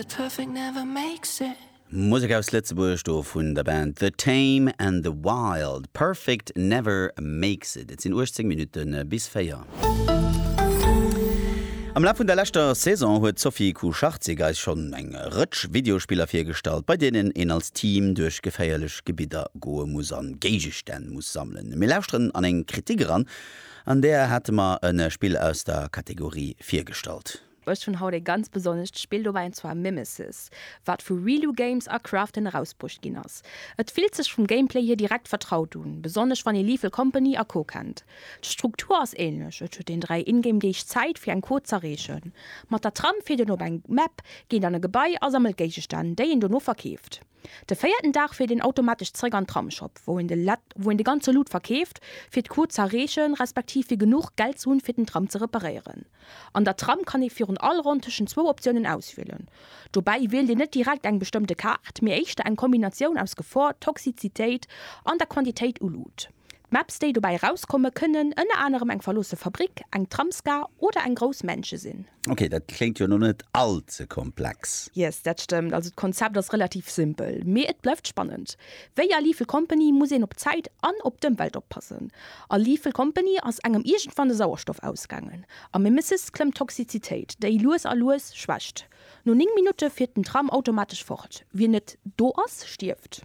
But perfect never makes it. Musek aus Lëtzebuerg, do vun der Band The Tame and the Wild, Perfect never makes it. Et sinn 18 Minutte bis 4. Am Laf vun der leschter Saison huet d'Sophie Kucharczyk eis schonn eng Rëtsch Videospiller virgestallt, bei deenen een als Team duerch geféierlech Gebidder goe muss a Géigestänn muss sammelen. Mir lauschteren an eng Kritik eran, an där hate mer e Spill aus der Kategorie virgestallt. Ech hunn haut ee ganz besonnescht Spill dobäi an zwar Mimesis, wat vu Reeloo Games a Krafton erausbruecht ginn ass. Et fillt sech vum Gameplay hier direkt vertraut un, besonnesch wann ee Lethal Company a Co kennt. D'Struktur ass ähnlech, et huet een 3 Ingame Deeg Zäit fir eng Code z'erreechen. Mat der Tram fiert een op eng Map, geet an e Gebai a sammelt Géigestänn, déi een dono verkeeft. De véierten Dag fiert een automatesch zeréck an Tramshop, wou een de ganze Loot verkeeft, fir d'Quot z'erreechen, respektiv fir genuch Geld ze hunn, fir den Tram ze reparéieren. An der Tram kann ee virun all Ronn tëschent zwou Optiounen auswielen. Dobäi wielt een net direkt eng bestëmmte Kaart, mee éischter eng Kombinatioun aus Gefor, Toxizitéit an der Quantitéit u Loot. D'Maps déi dobäi erauskomme kënnen ënner anerem eng verloosse Fabrick, eng Tramsgar oder eng grouss Mansion sinn. Ok, dat kléngt jo lo net all ze komplex. Yes, dat stëmmt. Also d'Konzept ass relativ simpel, mee et bleift spannend. Wéi a Lethal Company muss een op d'Zäit an op d'Ëmwelt oppassen. A Lethal Company ass engem iergendwann de Sauerstoff ausgaangen. Am Mimesis klëmmt d'Toxizitéit, déi lues a lues schwächt. No 9 Minutte fiert den Tram automatesch fort. Wien net do ass, stierft.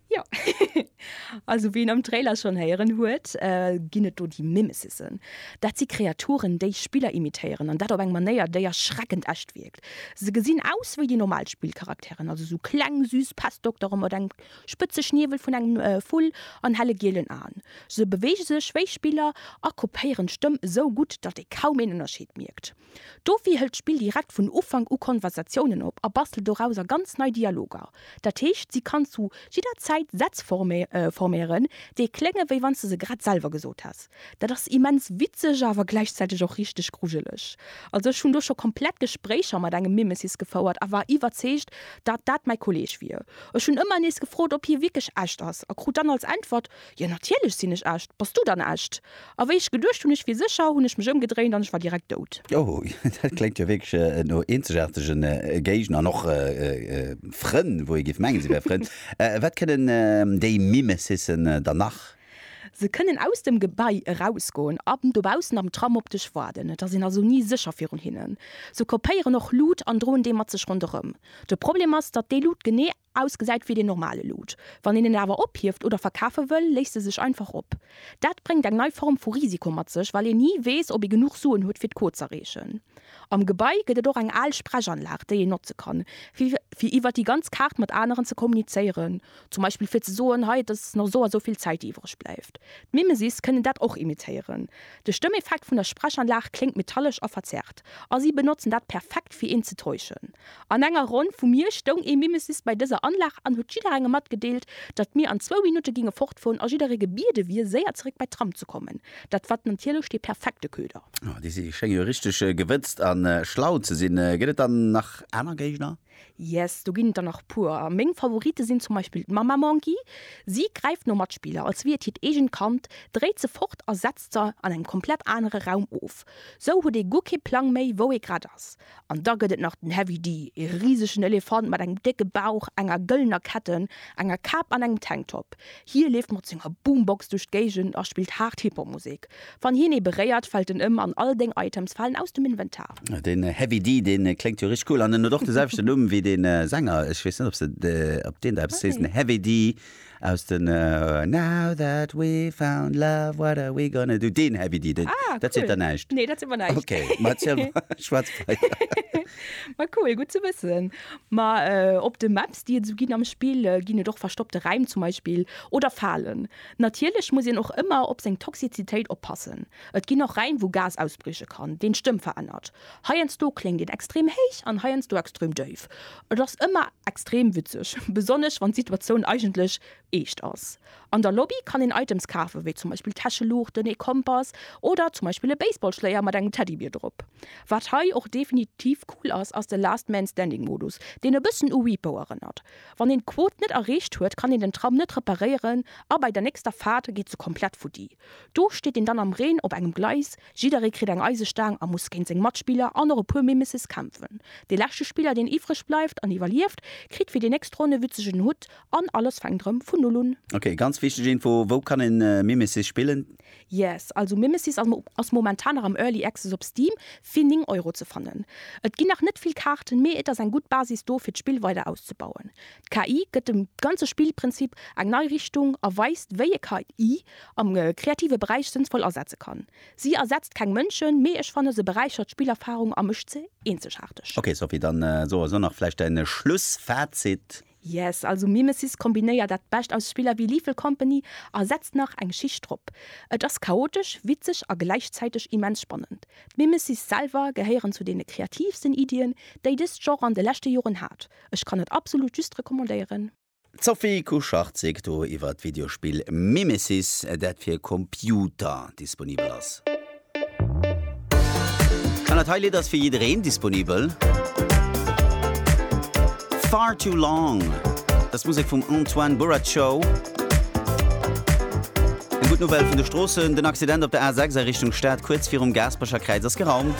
Jo, also wéi een am Trailer schonn héieren huet, ginn et do déi Mimesisen. Dat si Kreaturen, déi Spiller imitéieren, an dat op eng Manéier, déi erschreckend echt wierkt. Se gesinn aus wéi déi normal Spillcharakteren, also sou kleng, süss Pestdoktere mat engem spëtze Schniewel vun engem Vull an helle gielen Aen. Se beweege sech wéi Spiller a kopéieren d'Stëmm esou gutt, datt ee kaum een Ënnerscheed mierkt. Dofir hëlt d'Spill direkt vun Ufank u Konversatiounen op a bastelt dorauser ganz nei Dialoger. Dat heescht, si kann zu jidder Zäit Sätz forméieren, déi klénge wéi wann s de se grad selwer gesot häss. Dat ass immens witzeg, awer gläichzäiteg och richteg grujeleg. Also ech hunn do scho komplett Gespréicher mat engem Mimesis gefouert a war iwwerzeegt, datt dat mäi Kolleg wier. Ech hunn ëmmer nees gefrot, ob hie wierklech echt ass a krut dann als Äntwert, Jo natierlech sinn ech echt. Bass du dann echt? A wéi ech geduecht hunn ech wier sécher, hunn ech mech ëmgedréint an ech war direkt dout. Oh, dat kléngt jo wierklech no eenzegaartege Géigner an och Frënn, wou ee géif mengen, si wäre Frënn. Wat kënnen déi Mimesisen dann nach? Se kënnen aus dem Gebai erausgoen an dobaussen am Tram op dech waarden. Et ass een also ni sécher virun hinnen. Se kopéieren och Lut an droen déi mat sech ronderëm. De Problem ass, datt déi Lut genee. Ausgesäit wéi den normale Loot. Wann een en awer ophieft oder verkafe wëll, léisst e sech einfach op. Dat bréngt eng nei Form vu Risiko mat sech, well een ni weess, ob ee genuch Suen huet, fir d'Quot z'erreechen. Am Gebai gëtt et och eng al Sprechanlag, déi een notze kann, fir iwwer déi ganz Kaart mat aneren ze kommunizéieren, zum Beispill fir ze soen, hei, et ass nach esou a esou vill Zäit, déi iwwereg bleift. D'Mimesis kënnen dat och imitéieren. De Stëmmeffekt vun der Sprechanlag kléngt metallesch a verzerrt. a si benotzen dat perfekt fir een ze täuschen. An enger Ronn vu mir stoung ee Mimesis bei dëser Anlag an huet jidderengem matgedeelt, datt mir an zwou Minutte ginge fortfueren a jidderee gebiede wier séier zeréck bei d'Tram ze kommen. Dat wat natierlech dee perfekte Köder. Déi schénge jo richteg gewëtzt a schlau ze sinn. Gëtt et dann nach aner Géigner? Yes, do ginn et der nach puer. Meng Favorite sinn zum Beispill d'Mamma Monkey. Si gräift no Matspiller, als wier et hiert eegent Kand, dréit se fort a setzt se an engem komplett anere Raum of. Sou huet ee guer kee Plang méi, wou ee grad ass. An da gëtt et nach den Heavy D, ee risegen Elefant mat engem décke Bauch, enger gëllener Ketten, enger Kap an engem Tanktop. Hie leeft mat senger Boombox duerch d'Géigend a spillt haart Hip-Hop-Musek. Wann hien ee beréiert, fält en ëm an all deng Items falen aus dem Inventar. Den Heavy D deen kléngt jo richteg cool an en huet och de selwechten Numm wéi den Sänger, ech weess net op se op deen der eppes sees, den Heavy D aus den Now that we've found love what are we gonna do, deen Heavy D, deen, Ah dat seet der cool, näischt? nee dat seet mer näischt. Ok, ma et ass jo schwaarz Pei. Ma cool, gutt ze wëssen. Ma op de Maps déi et esou ginn am Spill, ginn et och verstoppte Räim zum Beispill oder Falen. Natierlech muss een och ëmmer op seng Toxizitéit oppassen. Et ginn och Räim wou Gas ausbrieche kann, deen d'Stëmm verännert. Heiansdo kléngt een extrem héich an heiansdo extrem déif. Et ass ëmmer extrem witzeg, besonnesch wann d'Situatioun eigentlech eescht ass. An der Lobby kann een Items kafen, wéi zum Beispill Täscheluuchten, ee Kompass oder zum Beispill e Baseballschléier mat engem Teddybier drop. Wat hei och definitiv cool ass, ass de Last-Man-Standing-Modus, deen e bëssen u Repo erënnert. Wann een d'Quot net erreecht huet, kann een den Tram net reparéieren a bei der nächster Faart geet se komplett futti. Do steet een dann am Reen op engem Gleis, jidderee kritt eng Eisestaang a muss géint seng Matspiller an och e puer Mimeses kämpfen. De leschte Spiller, deen iwwreg bleift an iwwerlieft, kritt fir déi nächst Ronn e witzegen Hutt an alles fänkt erëm vun Null un. Ok, ganz wichteg Info, wou kann een Mimesis spillen? Yes, also Mimesis ass momentan nach am Early Access op Steam fir 9 Euro ze fannen. Et ginn nach net vill Kaarten, mee et ass eng gutt Basis do fir d'Spill weider auszebauen. D'KI gëtt dem ganze Spillprinzip eng nei Richtung a weist wéi ee KI am kreative Beräich sënnsvoll asetze kann. Si ersetzt keng Mënschen, mee ech fannen se beräichert d'Spillerfarung a mécht se eenzegaarteg. Ok Sophie, dann soe so nach vläicht däin Schlussfazit. Yes, also Mimesis kombinéiert dat Bescht aus Spiller wéi Lethal Company a setzt nach eng Schicht drop. Et ass chaotesch, witzeg a gläichzäiteg immens spannend. D'Mimesis selwer gehéieren zu deene kreatiivsten Iddien, déi dëst Genre an de leschte Joren hat. Ech kann et absolut just recommandéieren. D'Sophie Kucharczyk do iwwer d'Videospill Mimesis, dat fir Computer disponibel ass. An dat hei Lidd ass fir jiddereen disponibel. Far Too Long ass d'Musek vum Antoine Burraco. Eng gutt Nouvelle vun de Stroossen, Den Accident op der A6 a Richtung Stad kuerz virum Gaasperecher Kräiz ass geraumt.